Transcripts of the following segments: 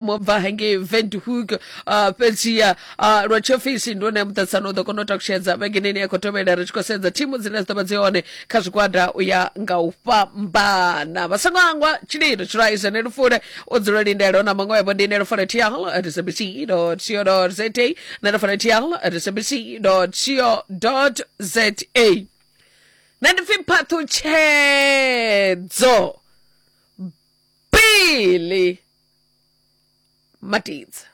mu bva hangei vendhoek uh, fhedziha uh, lwa tshiofisi ndi one muṱaṱisano u ḓo kona u takushedza vhengeneni ya khou tovhela ri tshi khou sedza thimu dzine dzi ḓo vha dzi hone kha zwigwada u ya nga u fhambana vha songo hangwa tshililo tshilwa izene lufule u dzula lindelo na maṅwe webo ndi ine lufule tial at sabc co za na lufule tial at sabc co za na ndi pfi phaṱhutshedzo bili matidze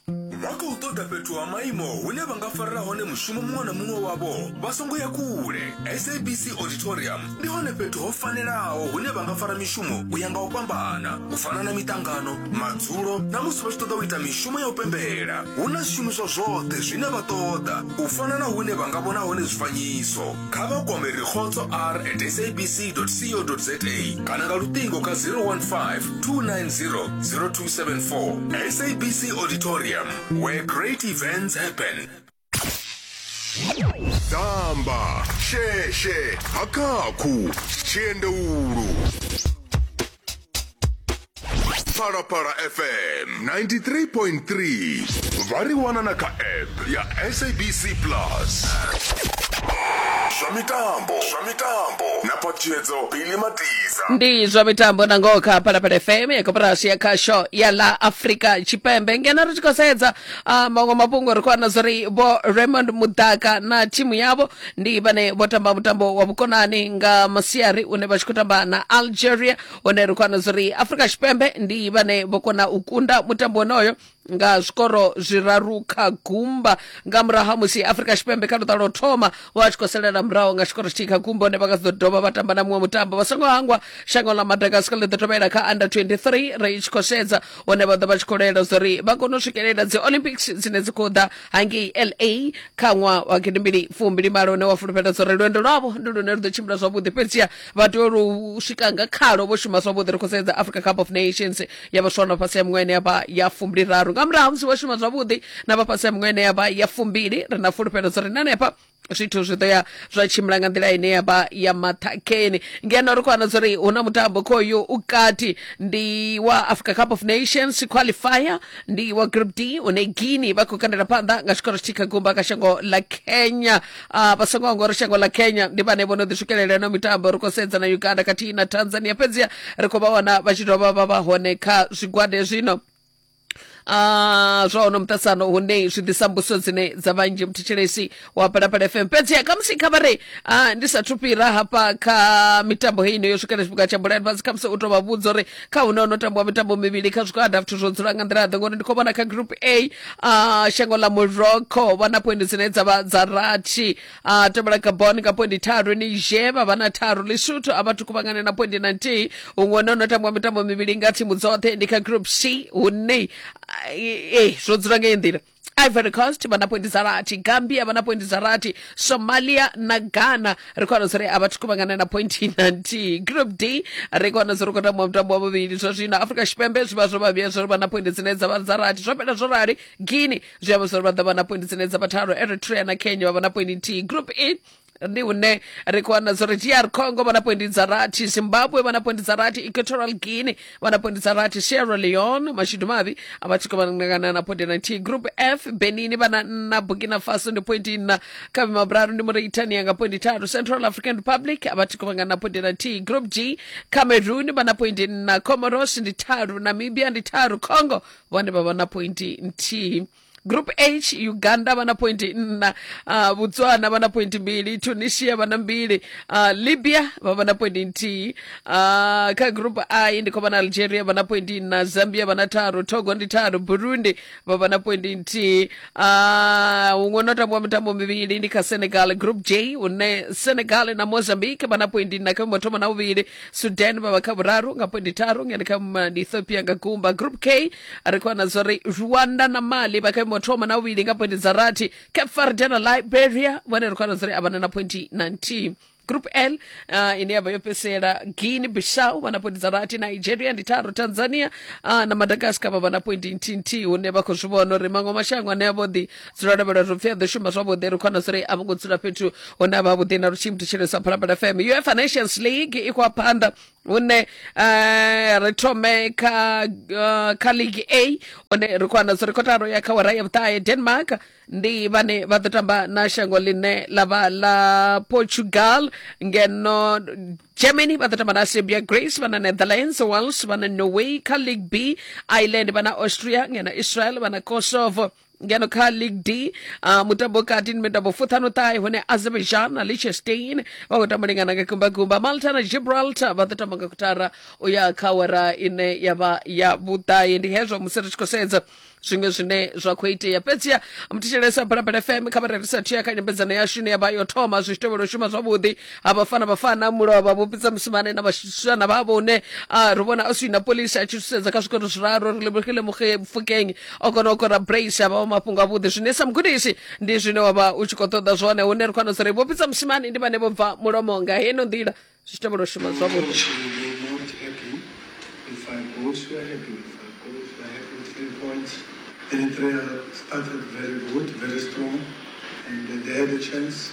vha khou ṱoḓa fhethu ha maimo hune vha nga farela hone mushumo muṅwe na muṅwe wavho vha songo ya kule sabc auditorium ndi hone fhethu ho fanelaho hune vha nga fara mishumo u ya nga u fhambana u fana na miṱangano madzulo na musi vha tshi ṱoḓa u ita mishumo ya u pembela hu na zwishumiswa zwoṱhe zwine vha ṱoḓa u fana na hune vha nga vhona hone zwifanyiso kha vha kwame rikgotso r at sabc co za kana nga luṱingo kha 015 290 0274 sabc auditorium where great events happen damba sheshe hakakhu tshiendeulu phalaphala fm 93.3 vha ri wana na kha app ya sabc plus zwa mitambo zwa mitambo na patshedzo bili matiza ndi zwa mitambo na ngoho kha phalaphala fm ya koporasi ya khasho ya la afrika tshipembe ngeno ri tshi khou sedza ah, maṅwe mafhungo ri khou wana zwa uri vho raymond mudaka na thimu yavho ndi vhane vho tamba mutambo wa vhukonani nga masiari une vha tshi khou tamba na algeria hone ri khou ana zuri afrika tshipembe ndi vhane vho kona u kunda mutambo wonoyo nga zwikoro zwiraru kha gumba nga murahu ha musi afrika tshipembe kha luṱa lwo thoma vha tshi khou salela murahu nga tshikoro tshithihi kha gumba hone vha nga ḓo dovha vha tamba na muṅwe mutambo vha songo hangwa shango ḽa madagascar ḽi ḓo tovhela kha under 23 ri tshi khou sedza hune vha ḓo vha tshi khou lwela zwa uri vha kone u swikelela dzi olympics dzine dzi khou ḓa hangei la kha ṅwaha wa gidimbili fumbili malo une wa fulufhela zwa uri lwendo lwavho ndi lune lu ḓo tshimbila zwavhuḓi fhedziha vha tea lu swika nga khalo vho shuma zwavhuḓi ri khou sedza africa cup of nations ya vhaswa na fhasi ya miṅwaha ine yavha ya fumbili raru nga murahu ha musi vho shuma zwavhuḓi na vha fhasi ya miṅwaha ine yavha ya fumbili ri na fulufhelo zwa uri na hanefha zwithu zwi ḓo ya zwa tshimbila nga nḓila ine ya vha ya maṱhakheni ngeno ri khou wana zori hu na mutambo khoyu u kati ndi wa africa cup of nations qualifier ndi wa group d une guinea vha khou kandela phanḓa nga tshikoro tshi kha gumba kha shango ḽa kenya Ah, vha songo anga uri shango ḽa kenya ndi vhane vho no ḓi swikelela ino mitambo ri khou sedza na uganda khathihi na tanzania fhedziha ri khou vha wana vha tshi dovha vha vha hone kha zwigwada zwino Ah, zwa ono muṱasano hune zwi ḓisa mbuso dzine dza vhanzhi muthetshelesi wa palapala fm fhedzi khamusi kha vhare ah, ndi sathu fhira hafha kha mitambo heino yo swikela tshifhinga tsha bulani fhasi khamusi u to vha vhudza uri kha hune ono tambiwa mitambo mivhili kha zwigwada zwithu zwo dzula nga nḓila ḓe ngori ndi khou vhona kha group a ah, shango ḽa morocco vha na poindi dzine dza vha dza rathi a tevhela gabon nga poindi tharu niger vha vha na tharu lesotho a vhathu kuvhangane na poindi na nthihi huṅwe hone no tambwa mitambo mivhili nga thimu dzoṱhe ndi kha group c hune ah, eh, zwo dzula ngeyi nḓila ivory coast vha na poindi dza rathi gambia vha na poindi dza rathi somalia na ghana ri khou wana zwo ri a vhathu kuvhangana na pointi na nthihi group d ri khou wana zwo ri khou tamba mutambo wa vhuvhili zwa zwino afrika tshipembe zwi vha zwo vhavhiya zwo ri vha na poindi dzine dza vha dza rathi zwo fhela zwo rali guine zwi amba zwori vha ḓo vha na poindi dzine dza vha thalo eritrea na kenya vha vha na poindi nthihi group e ndi hune ri khou wana zwori dr congo vha na poindi dza rathi zimbabwe vha na poindi dza rathi equatorial guinea vha na poindi dza rathi sierra leone mashudu mavhi a vha tshi khou vhangana na poindi na nthihi group f benini vha na nna burkina faso ndi poindi nna kha vhima vhuraru ndi mauritania nga poindi tharu central african republic a vha tshi khou vhangana na poindi na nthihi group g cameroon vha na poindi nna comoros ndi tharu namibia ndi tharu congo vhone vha vha na pointi nthihi group h uganda vha na pointi nna uh, botswana vha na pointi mbili tunisia vha na mbili uh, libya vha vha na pointi nthihi uh, kha group i ndi khou vha na algeria vha na pointi nna zambia vha na tharu togo ndi tharu burundi vha vha na pointi nthihi uh, huṅwe no tambiwa mitambo mivhili ndi kha senegal group j une senegal na mozambique vha na pointi nna kha thoma na uvhili sudan vha vha kha vhuraru nga poindi tharu ngeno kha ma- ndi ethiopia nga gumba group k ri khou wana zwori rwanda na mali vha kha imo thoma na vhuvhili nga poindi dza rathi cape verde na liberia vhone ri khou wana zwori a vhana na pointi na nthihi group l uh, ine yavha yo fhedzisela guine bissau vha na pointi dza rathi nigeria ndi tharu tanzania uh, na madagascar vha vha na pointi nthihi nthihi hune vha khou zwi vhona uri maṅwe mashango ane a vho ḓi dzula lavhelwa ri pfi a ḓo shuma zwavhuḓi ri khona suri a vho ngo dzula fhethu hune a vha vhuḓi na lutshii muthishelesa phalaphala fm uefa nations league i khou ya phanḓa hune eh, ri thome kha eh, kha league a hune ri khou wana suri kotaro ya kha wara ya vhuṱahe denmark ndi vhane vha ḓo tamba na shango ḽine ḽa vha ḽa portugal ngeno germany vha ḓo tamba na serbia grace vha na netherlands wales vha na norway kha league b ireland vha na austria ngeno israel vha na kosovo ngeno kha league d uh, mutambo kati ndi mitambo fuṱhanu ṱahe hune azerbaijan na liechtenstein vha khou tamba lingana nga gumbagumba malta na gibraltar vha ḓo tamba nga kutara u ya kha wera ine ya vha ya vhuṱahe ndi hezwo musi ri tshi khou sedza zwiṅwe zwine zwa khou itea fhedziha muthetshelesa balabala fm kha vha rerisa thia kha nyambedzano yashu ine ya vha yo thoma zwi tshi tevhela u shuma zwavhuḓi ha vhafana vhafana mulo wa vhavhopisa musimane na vhashana vha vhone a ri vhona a swi na polisi a tshi thusedza kha zwikolo zwiraru ri lebogile mufukeng o kona u kora brace a vha wa mafhungo avhuḓi zwine sa mugudisi ndi zwine wa vha u tshi khou ṱoḓa zwone hune ri khou wana zwi ri vhopisa musimane ndi vhane vho bva mulomo nga heno nḓila zwi tevhela u shuma zwavhuḓi Eritrea started very good, very strong, and they had a chance.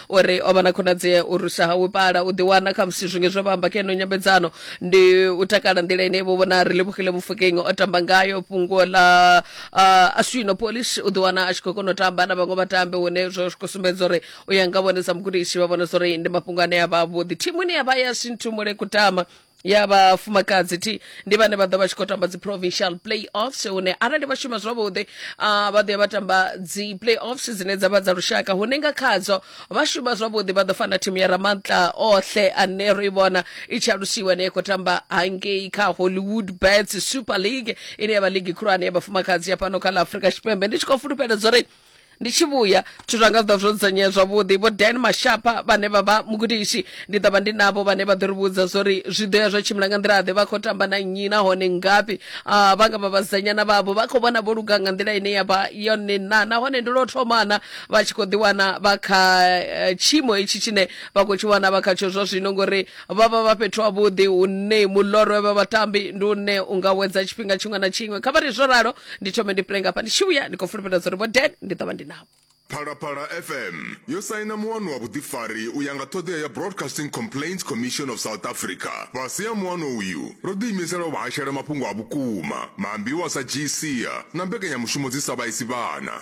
o ri o vha na khonadzea u rusa hawe pala u ḓiwana kha musi zwinge zwe vha amba keno nyambedzano ndi u takala nḓila ine vho vhona ri lebohile mufokeng o tamba ngayo fhungo ḽa uh, aswino polish u ḓiwana a tshi khou kona u tamba na vhaṅwe vhatambi hune zwo zwi khou sumbedza uri u ya nga vhone sa mugudisi vha vhona zwa uri ndi mafhungo ane a vha avhuḓi thimu ine ya vha ya sinthu mule kutama ya vhafumakadzi thi ndi vhane vha ḓo vha tshi khou tamba dzi provincial playoffs hune arali vha shuma zwavhuḓi ah, vha ḓo ya vha tamba dzi playoffs dzine dza vha dza lushaka hune nga khadzo vha shuma zwavhuḓi vha ḓo fana thimu ya ramantla ohle ane ro i vhona i tshi alusiwa ne ya khou tamba hangei kha hollywood bets super league ine ya vha ligi khulwane ya vhafumakadzi ya fhano kha ḽa afrika tshipembe ndi tshi khou fulufhela zwo ri ndi tshi vhuya zwithu zwanga zwi ḓo zwo dzudzanyea zwavhuḓi vho dan mashapa vhane vha vha mugudisi ndi ḓo vha ndi navho vhane vha ḓo ri vhudza zwo ri zwi ḓo ya zwo tshimbila nga nḓila ḓe vha khou tamba na nnyi nahone ngafhi Ah, vha nga vha vhasidzanyana vhavho vha khou vhona vho luga nga nḓila ine ya vha yone na nahone ndi lwo thomana vha tshi khou ḓiwana vha kha eh, tshiimo hetshi tshine vha khou tshi wana vha khatsho zwa zwino ngori vha vha vha fhethu havhuḓi hune mulorwe vha vhatambi ndi une u nga wedza tshifhinga tshiṅwe na tshiṅwe kha vha ri zwo ralo ndi thome ndi pule ngafha ndi tshi vhuya ndi khou fulufhela zwa uri vho den ndi ḓo vha ndi navho Phalaphala FM yo saina muwano wa vhuḓifari u ya nga ṱhoḓea ya Broadcasting Complaints Commission of South Africa. Fhasi ha muwano uyu, ro ḓiimisela u vha hashela mafhungo a vhukuma, maambiwa sa GCA na mbekanyamushumo dzi sa vhaisi vhana.